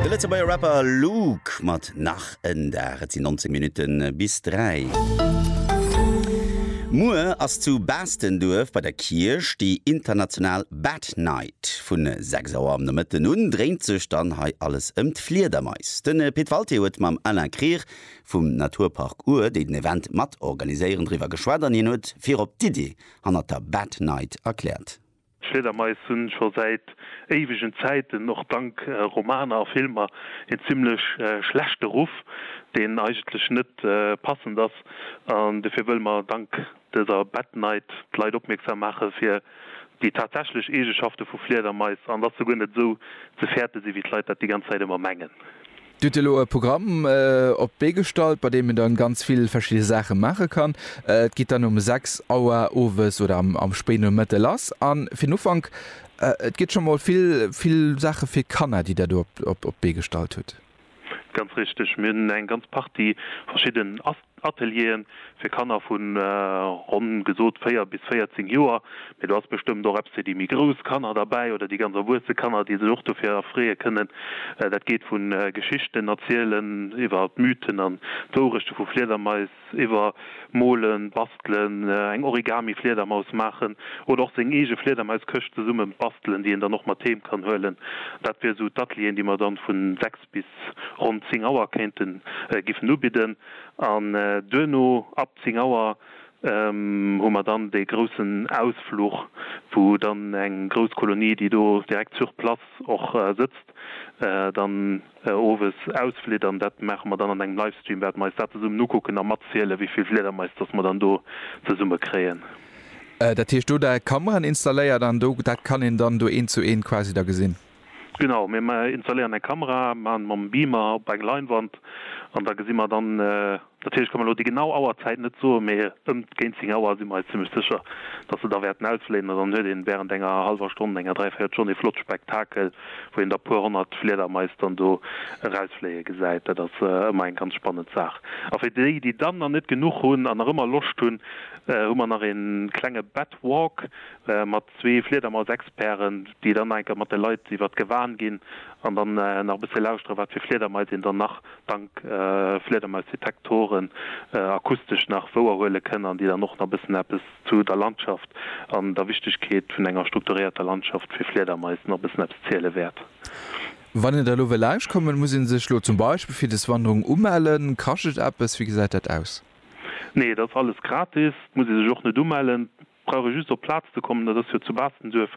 De Lëtzebuerger Rapper Luke mat Nach en Dag. Et sinn 19 Minutte bis 3. Muer ass zu Baastenduerf bei der Kierch déi international Bat Night. Vu 6 Auer am Nomëtten un dréint sech dann hei alles ëm d'Fliedermais. Den Pit Walté huet mam Alain Krier vum Naturpark Our, déi den Event mat organiséieren, driwwer geschwat an hien huet virop d'Iddi hannert der Bat Night erkläert. D'Fliedermais hunn scho säit éiwegen Zäiten, och dank Romaner a Filmer, een zimlech schlechte Ruff, deen eigentlech net passend ass. An dofir wëlle mer dank dëser Bat Night d'Leit opmierksam maache fir déi tatsächlech Eegeschafte vu Fliedermais, an dass se guer net esou ze fäerte sinn, wéi d'Leit dat déi ganz Zäit ëmmer mengen. Dir hutt elo e Programm op d'Bee gestallt, bei deem een dann ganz vill verschidde Saache maache kann. Et geet dann um 6 Auer owes oder am Spéinomëtte lass. An fir den Ufank, et gëtt scho mol vill, vill Saache fir Kanner, déi Der do op d'Bee gestallt hutt. Ganz richteg. Mir hunn eng ganz Partie verschidden Ateliere fir Kanner vu ronn gesot 4 bis 14 Joer, mee do ass bestëmmt och eppes fir déi méi grouss Kanner derbäi oder déi ganz erwuesse Kanner, déi sech och dofir erfreeë kënnen. Dat geet vu Geschichten erzielen iwwer d'Mythen an d'Wourechte vu Fliedermais, iwwer molen, bastelen, eng Origami-Fliedermaus maachen oder och seng eege Fliedermaiskëscht zesumme bastelen, déi een dann och mat heem kann huelen. Dat wier esou d'Atelieren, déi mer dann vu 6. bis ronn 10 Auer kéinten giffen ubidden an duerno ab 10 Auer hu mer dann dee groussen Ausfluch, wou dann eng grouss Kolonie, déi do direkt sur place och sëtzt, dann owes ausflitt an dat maache mer dann an engem Livestream, wäerte mer eis dat zesummen ukucken a matziele wéi vill Fliedermais datt mer dann do zesumme kréien. Dat heescht do da Kameraen installéiert an do dat kann een dann do eent zu eent quasi da gesinn? Genau, mir installéieren eng Kamera, maachen mam Beamer op eng Leinwand an da gesi mer dann, natierlech ka mer elo déi genau Auerzäit net soen, mee ëm géint 10 Auer si mer eis zimmlech sécher, datt se da wäerten ausfléien an dann huet een wärend enger hallwer Stonn, enger dräivéiert Stonn ee flott Spektakel, wou een da puer honnert Fliedermais dann do erausfléie gesäit. Dat ass ëmmer eng ganz spannend Saach. A fir déi, déi dann nach net genuch hunn an nach ëmmer Loscht hunn, hu mer nach ee klenge Bat Walk mat Zwee Fliedermausexperten, déi dann nach eng Kéier mat de Leit iwwert d'Gewan ginn an dann nach e bësse lauschtere wat fir Fliedermais een dann nach dank Fliedermausdetektoren akustesch nach wouerhuele kënn an déi dann och nach e bëssen eppes zu der Landschaft an der Wichtegkeet vun enger strukturéierter Landschaft fir Fliedermais nach e bëssen eppes ziele wäert. Wann een der elo wëll lauschtkommen, muss ee sech elo zum Beispill fir des Wanderung umellen? Kascht et eppes? Wéi gesäit dat aus? Nee, et ass alles gratis. Et muss ee sech och net umellen. Brauch ee just op d'Plaz ze kommen, dat ass jo zu Baastenduerf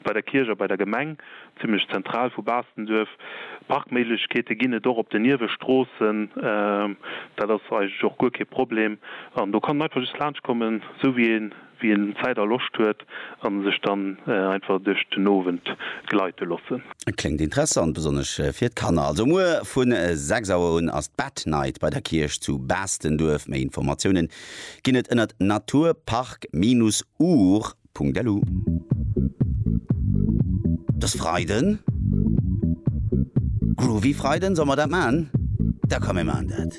bei der Kierch a bei der Gemeng, zimlech zentral vu Baastenduerf. Parkméiglechkeete ginn et och op den Niewestroossen, dat ass eigentlech och guer kee Problem. An do kann en einfach just laanscht kommen, esou wéi een wéi een Zäit a Loscht huet a sech dann einfach duerch den Owend gleite loossen. Kléngt interessant, besonnesch fir d'Kanner. Also muer vu 6 Auer un ass d'Bad Night bei der Kierch zu Baastenduerf. Méi Informatiounen ginn et ënnert Natur, Park, Minus, Ur. Punkt-Elu. Dass Freiden Groovy Freiden, solle mer dat man? Da komm mir man dat.